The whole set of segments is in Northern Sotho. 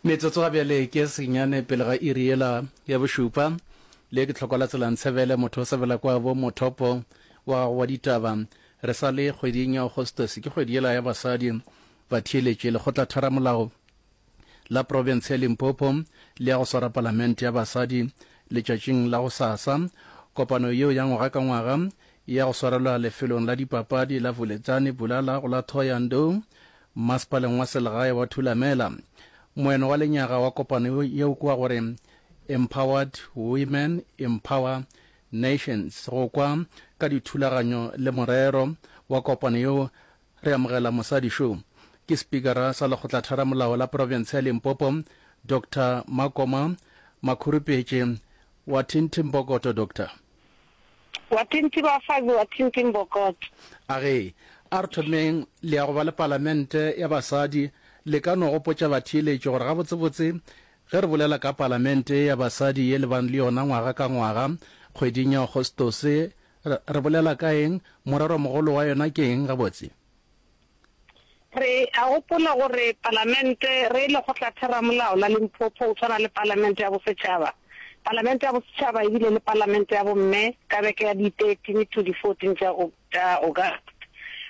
Metsotso ga bjale ke senyane pele ga iri yela ya bošupa. Le ke tlhoko la tselang tshebele motho o sebela kwa bo mothopo wa gago wa ditaba. Re sa le kgweding ya Augustus, ke kgwedi yela ya basadi. Batheeletši, lekgotla tharamolao la profense ya Limpopo le ya go swara palamente ya basadi letšatšing la go sasa. Kopano yeo ya ngwaga ka ngwaga ya go swarelwa lefelong la dipapadi la Vuledzani Bulala go la Thohoyandou Mmasepaleng wa selegae wa Thulamela, moeno wa lenyaga wa kopano yeo ke wa gore Empowered Women Empower Nations. Go kwa ka dithulaganyo le morero wa kopano yeo re amogela mosadi šo ke Spikara sa Lekgotlatheramolao la Profense ya Limpopo, Doctor Makoma Makhurupetše wa Thinthimpokoto. Doctor. Wa tlinti ba fazi wa tlinti mbokot. A re, A re thomeng le ya go ba le palamente ya basadi, le ka no gopotša batheeletši gore gabotsebotse ge re bolela ka palamente ya basadi ye le bang le yona ngwaga ka ngwaga kgweding ya Agostose, re bolela ka eng, morero mogolo wa yona ke eng gabotse? Re a gopola gore Palamente re Lekgotlatheramolao la Limpopo go tshwana le Palamente ya Bosetšhaba, Palamente ya Bosetšhaba e bile le Palamente ya Bomme ka beke ya di 13 to di 14 tša tša August.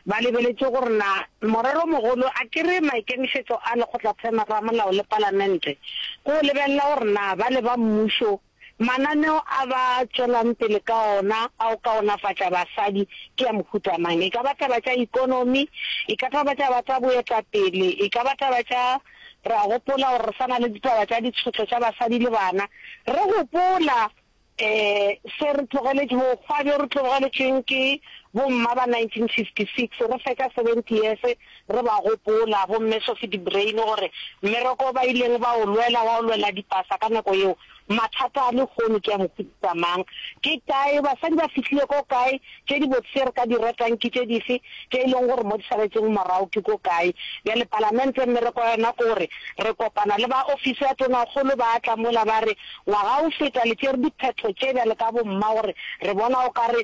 Ba lebeletše gore na morero o mogolo akere maikemišetšo a Lekgotlatheramolao le Palamente ke go lebelela gore na ba le ba mmušo Mananeo a ba tšwelang pele ka ona a go kaonafatša basadi ke a mohuta mang? E ka ba taba tša ikonomi, e ka taba tša ba tša boetapele, e ka ba taba tša, re a gopola gore re sa na le ditaba tša ditšhotlo tša basadi le bana, re gopola um se re tlogeletše, bokgwa bjo re tlogeletšweng ke bomma ba 1956, re fetša 70 years Re ba gopola bomme Sophie de Bruyn gore mmereko o ba ileng ba o lwela wa go lwela dipasa ka nako yeo, mathata a lehono ke a mohuta mang? Ke kae? Basadi ba fihlile ko kae? Tše dibotse tše re ka di ratang ke tše dife? Tše e lego gore mo di saletšego morago ke ko kae? Bjale Palamente mmereko wa yona ke gore re kopana le ba ofisi ya Tonakgolo, ba tla mola ba re, Ngwaga o feta le tšere diphetho tše bjale ka bomma gore re bona o ka re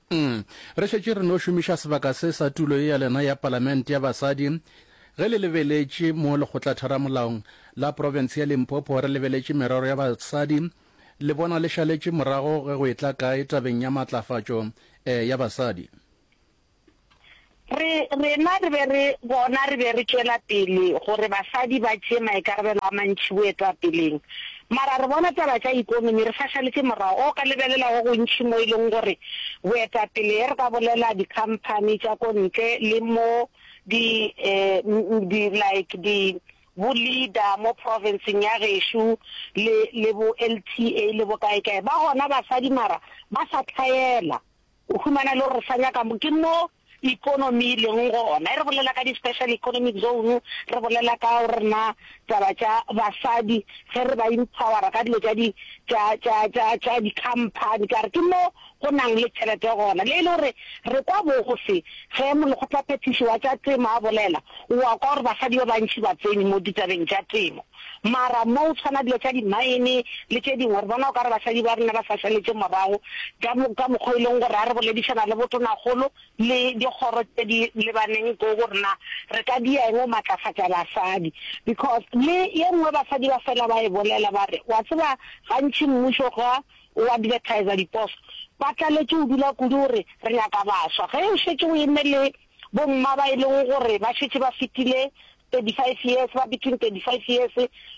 Uhm, re šetše re no šomiša sebaka se sa tulo ye ya lena ya Palamente ya Basadi ge le lebeletše mo Lekgotlatheramolaong la Profense ya Limpopo re lebeletše merero ya basadi, le bona le šaletše morago ge go etla kae tabeng ya matlafatšo eh ya basadi? Re, rena re be re, bona re be re tšwela pele, gore basadi ba tšee maikarabelo a mantši boetapeleng. Mara re bona taba tša ekonomi re sa šaletše morago. O ka lebelela go gontši mo e lego gore boetapele, ge re ka bolela dikhamphani tša ko ntle, le mo di, um, di, like di, bo leader mo province-ng ya gešo, le, le bo LTA le bokaekae, ba gona basadi mara ba sa hlaela. O humana e le gore sa nyaka mo ke mo economy e leng gona. E re bolela ka di special economic zone, re bolela ka gore na taba tša basadi ge re ba empower-a ka dilo tša di tša tša tša tša di company ka re ke mo go nang le tšhelete gona. Le e le gore re kwa bose ge molekgotlaphethiši wa tša temo a bolela, o a kwa gore basadi ba bantši ba tsene mo ditabeng tša temo. Mara mo o tshwana dilo tša di mine le tše dingwe, re bona o ka re basadi ba rena ba sa šaletše morago ka mo ka mokgwa o e leng gore ha re boledišana le botonakgolo le dikgoro tše di lebaneng ko go rena re ka dia eng go matlafatša basadi because le ye nngwe basadi ba fela ba e bolela ba re wa tseba gantši mmušo ga o advertiser diposo ba tlaletše o dula kudu o re re nyaka baswa ge o šetše o eme le bomma ba e leng gore ba šetše ba fetile 35 years, ba between 35 years,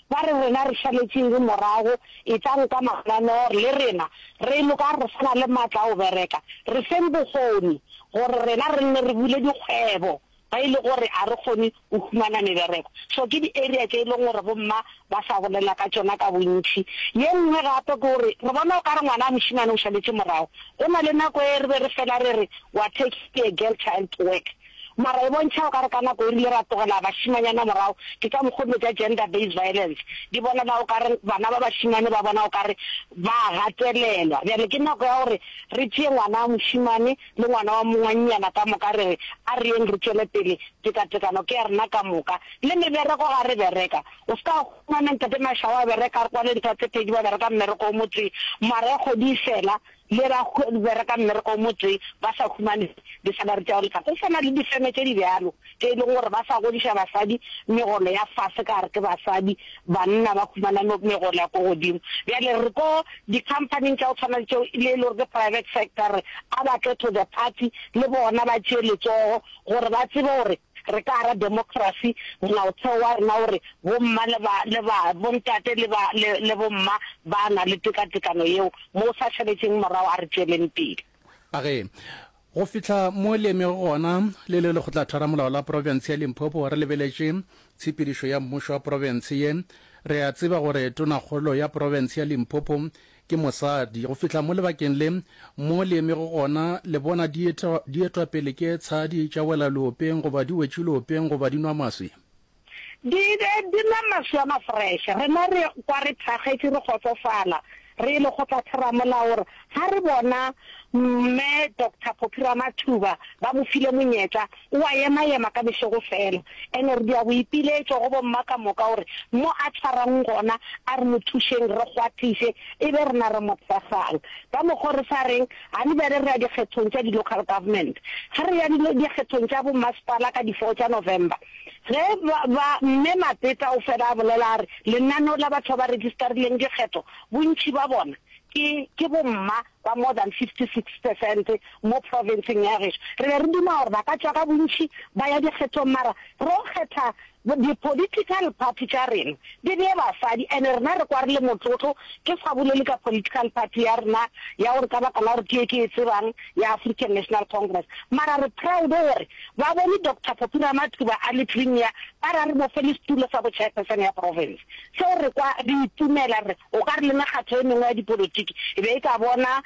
ba re rena re šaletšeng re morago, etlang ka mananeo le rena, re loka re sa na le matla a go bereka, re feng bokgoni gore rena re nne re bule dikgwebo ge e le gore a re kgone go humana mebereko. So ke di area tše e leng gore bo mma ba sa bolela ka tšona ka bontši. Ye nngwe gape ke gore re bona o ka re ngwana wa mošemane o šaletše morago, go na le nako e re be re fela re re wa taking a girl child to work, Mara e bontšha o ka re ka nako e rile ra tlogela bašimanyana morago, ke ka mokgo dilo tša gender based violence di bonala o ka re bana ba bašimane ba bona o ka re ba a gatelelwa. Bjale ke nako ya gore re tšee ngwana wa mošimane le ngwana wa mongwannyana ka moka re re a re yeng re tšwele pele, tekatekano ke ya rena ka moka. Le mebereko ga re bereka, o se ka humana Ntate Mashawa a bereka a re kwa le ntho tse pedi ba bereka mmereko o motsee, mara e kgwedi e fela le ba bereka mmereko o motse ba sa humane di sa ba ruta go lefa. Go swana le difeme tše di bjalo tše e lego gore ba sa godiša basadi megolo ya fase ka gore ke basadi, banna ba humana megolo ya ko godimo. Bjale re ko di-company-ing tša go tshwana le tšeo le e le gore ke private sector re a ba tle to the party le bona ba tšee letsogo gore ba tsebe gore Re ka ra democracy, molaotheo wa rena o re, Bomma le ba, le ba, bontate le ba, le, le bomma ba na le tekatekano yeo. Mo o sa šaletšeng morago, a re tšweleng pele. A re, Go fihla mo le emego gona, le le Lekgotlathwaramolao la Profense ya Limpopo, re lebeletše tshepedišo ya Mmušo wa Profense ye. Re a tseba gore Tonakgolo ya Profense ya Limpopo Ke mosadi. Go fihla mo lebakeng le mo le emego gona, le bona dietwapele ke tshadi tša wela leopeng goba di wetše leopeng goba di nwa maswi. Di be di nwa maswi a mafreše. Rena re kwa re thakgetše, re kgotsofala, re e le go tla theramolaho gore ga re bona Mme Doctor Phophi Ramathuba ba mo file monyetla O a ema-ema ka bošego fela. And re dira boipiletšo go bomma ka moka gore mo a tshwarang gona a re mo thušeng re kgwathiše e be rena re mo thekgang. Ka mokgwa o re sa reng ga le bjale re ya dikgethong tša di-local government. Ge re ya dikgethong tša bommasepala ka di four tša November, ge ba, ba, Mme Mapeta o fela a bolela a re, lenaneo la batho ba ba registarileng dikgetho bontši ba bona ke, ke bomma ba more than 56 percent mo profenseng ya geso. Re be re duma gore ba ka tšwa ka bontši ba ya dikgethong mara ro kgetha di political party tša rena di bee basadi and rena re kwa re le motlotlo ke sa bolele ka political party ya rena ya gore ka baka la gore ke ye ke e tsebang ya African National Congress mara re proud gore ba bone Doctor Poppy Ramathuba a le premier ba ra re mo fe le setulo sa bo chairperson ya province Seo re kwa re itumela, re o ka re le mekgatlo e mengwe ya dipolotiki e be e ka bona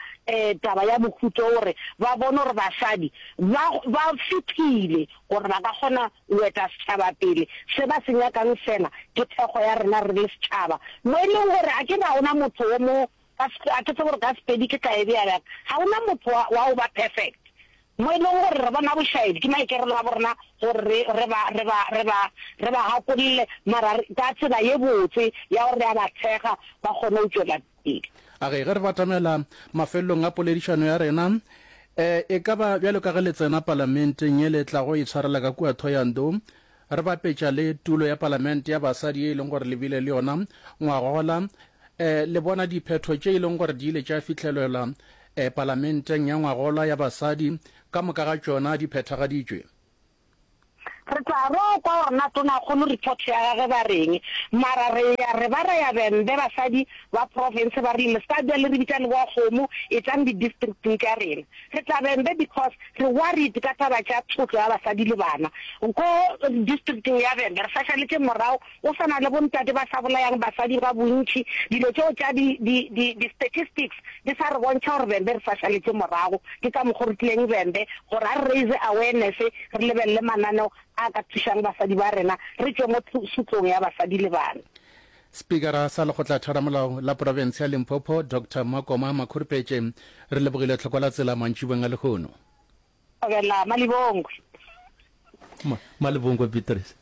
taba ya mohuta wo gore ba bone gore basadi ba ba fiphile gore ba ka kgona go eta setšhaba pele. Se ba se nyakang fela ke thekgo ya rena re le setšhaba, mo e leng gore a ke re ga go na motho wo mo, a ke tsebe gore ka Sepedi ke tla e bea bjang, ga go na motho wa wa go ba perfect. Mo e lego gore re bona bošaedi, ke maikarelo a borena gore re, re ba, re ba, re ba, re ba gakolole, mara re, ka tsela ye botse ya gore re a ba thekga ba kgone go tšwela pele. A ge, ge re batamela mafelelong a poledišano ya rena, e, e ka ba bjalo ka ge le tsena Palamenteng ye le tlago e tshwarela ka kua Thohoyandou, Re bapetša le tulo ya palamente ya basadi ye e leng gore le bile le yona ngwagola. E, le bona diphetho tše e leng gore di ile tša fihlelelwa e, palamenteng ya ngwagola ya basadi, ka moka ga tšona di phethagaditšwe. Re tla re o kwa gore na tonakgolo report ya gage ba reng. Mara re ya re ba ra ya bembe basadi ba profense ba rile le se ka bja le re bitša le boa kgomo, etlang di districting tša rena. Re tabeng be because re worried ka taba tša tshotlo ya basadi le bana. Ko districteng ya Venda re sašaletše morago go swana le bontate ba sa bolayang basadi ga bontši. Dilo tšeo tša di di di di statistics di sa re bontšha gore Venda re sašaletše morago. Ke ka mokgo re tlileng Venda gore a re raise awareness re lebelele mananeo a ka thušang basadi ba rena re tšwe mo tshotlong ya basadi le bana. Spikara sa Lekgotlatheramolao la Profense ya Limpopo, Doctor Makoma Makhurupetje, re lebogile tlhoko la tsela mantšibong a lehono. Thobela Malibongwe. Ma, Malibongwe Beatrice.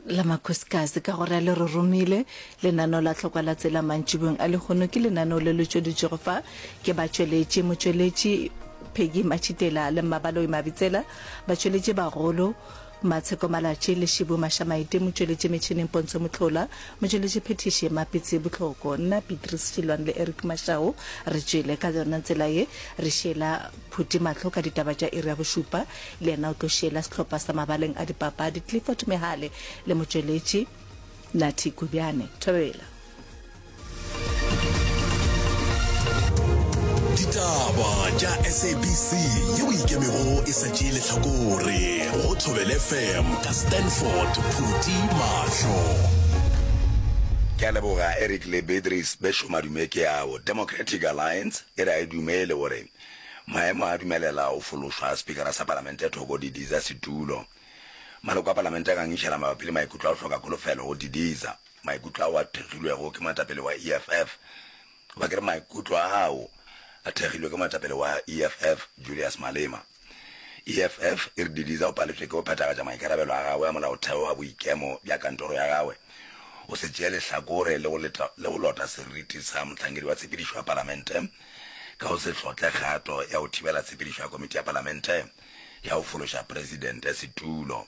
La Makhosikazi ka gore le re romile. Lenaneo la tlhokwa la tsela mantšibong a lehono ke lenaneo le le tšweditšwego fa ke batšweletši, motšweletši Peggy Matšitela le Mmabaloi Mabitsela, batšweletši bagolo, Matsheko Malatši, Leshibu Mashamaite, motšweletši metšhineng Pontsho Motlhola, motšweletši phethiši Mapitsi Botlhoko, nna Beatrice Šilwane le Eric Mashau re tšwele ka yona tsela ye. Re šiela Phuti mahlo ka ditaba tša iri ya bošupa, le yena o tlo šiela sehlopha sa mabaleng a dipapadi Clifford Mehale le motšweletši Nathi Kobjane. Thobela. ditaba tša sabc ye o ikemego e sa tšee letlhakore go thobele fm ka stanford phuti mahlo ke a leboga eric le beatrice bešo madume ke ao democratic alliance e re a e dumele gore maemo a dumelela o fološwa a spikara sa palamente thoko didiza setulo maloko a palamente a gangišela mabapi le maikutlo a go hloka kholofelo go didiza Maikutlo ao a thekgilwego ke moetapele wa EFF, goba ke re maikutlo ao a thekgilwe ke moetapele wa EFF, Julius Malema. EFF e re Didiza o paletšwe ke go phethagatša maikarabelo a gagwe a molaotheo a boikemo bja kantoro ya gagwe, go se tšee lehlakore le go leta le go lota seriti sa mohlankedi wa tshepedišo ya Palamente ka go se hlotle kgato ya go thibela tshepedišo ya Komiti ya Palamente ya go fološa Presidente setulo.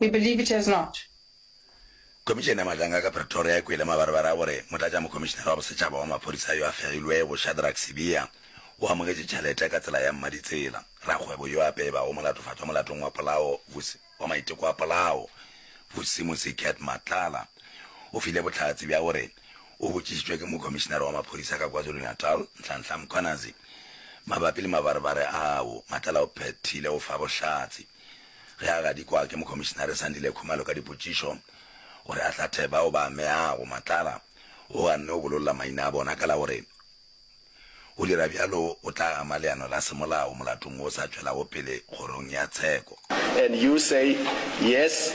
We believe it has not. Khomišene ya Matlanga ka Pretoria e kwele mabarebare a gore Motlatšamokhomišenare wa Bosetšhaba wa Maphodisa yo a fegilwego, Shadrack Sibiya, o amogetse tšhelete ka tsela ya mmaditsela. Rakgwebo yo a pebago molatofatšwa molatong wa polao, Vusi, wa maiteko a polao, Vusi Musicat Matlala, o file bohlatse bja gore o botšišitšwe ke Mokhomišenare wa Maphodisa ka KwaZulu-Natal, Nhlanhla Mkhwanazi, mabapi le mabarebare ao. Matlala o phethile go fa bohlatse. Ge a gadikwa ke Mokomišinare Sandile Khumalo ka dipotšišo gore a hlathe bao ba ameago, Matlala o ganne go bololla maina a bona ka la go re go dira bjalo go tla ama leano la semolao molatong wo o sa tšwelago pele Kgorong ya Tsheko. And you say, Yes,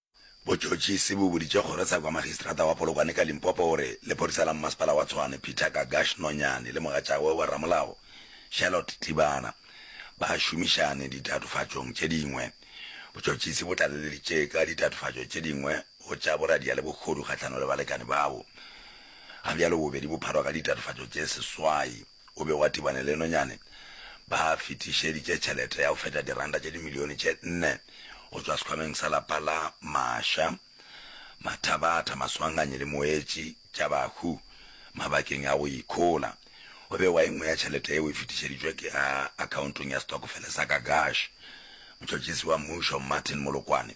Botšhotšhisi bo boditše kgoro sa kwa Magistrata wa Polokwane ka Limpopo gore lephodisa la mmasepala wa Tshwane Peter Gagash Nonyane le mogatšagwe wa ramolao Charlotte Tlibana ba šomišane ditatofatšong tše dingwe. Botšhotšhisi bo tlaleleditše ka ditatofatšo tše dingwe go tša boradia le bohodu kgahlano le balekane babo. Ga bjalo bobedi bo pharwa ka ditatofatšo tše seswai. o be wa tibane le nonyane, ba fetišeditše tšhelete ya go feta diranta tše dimilione tše nne go tšwa sekhwameng sa lapa la Masha, Mathabatha, Maswanganyi le Moetši tša bahu mabakeng a go ikhola. Go bewa e nngwe ya tšhelete yeo e fetišeditšwe ke a akhaontong ya stokofele sa Gagash. Motšhotšhisi wa Mmušo Martin Molokwane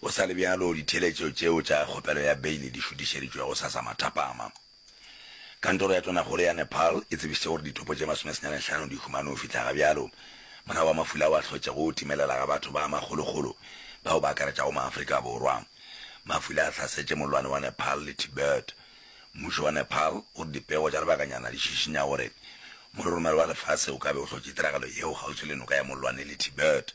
Go sa le bjalo, ditheeletšo tšeo tša kgopelo ya beile di šutišeditšwe go sa sa mathapama. Kantoro ya Tonakgolo ya Nepal e tsebišitše gore dithopo tše masomesenyane hlano di humane go fihla ga bjalo, morago ga mafula ao a hlotšego go timelela ga batho ba makgolokgolo bao ba akaretšago Maafrika Borwa. Mafula a hlasetše mollwane wa Nepal le Tibet. Mmušo wa Nepal o re dipego tša lebakanyana di šišinya gore mororomelo wa lefase o ka be o hlotše tiragalo yeo kgauswi le noka ya mollwane le Tibet.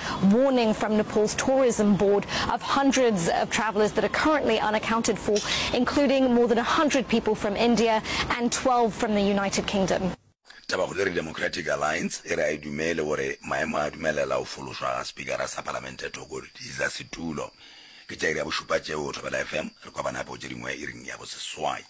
Warning from Nepal's tourism board of hundreds of travelers that are currently unaccounted for, including more than 100 people from India and 12 from the United Kingdom. Tabakgolo e re Democratic Alliance e re a e dumele gore maemo a dumelela go fološwa ga Spikara sa Palamente Thoko Diza setulo. Ke tša iri ya bošupa tšeo, Thobela FM, re kwabana gape go tše dingwe iring ya boseswai.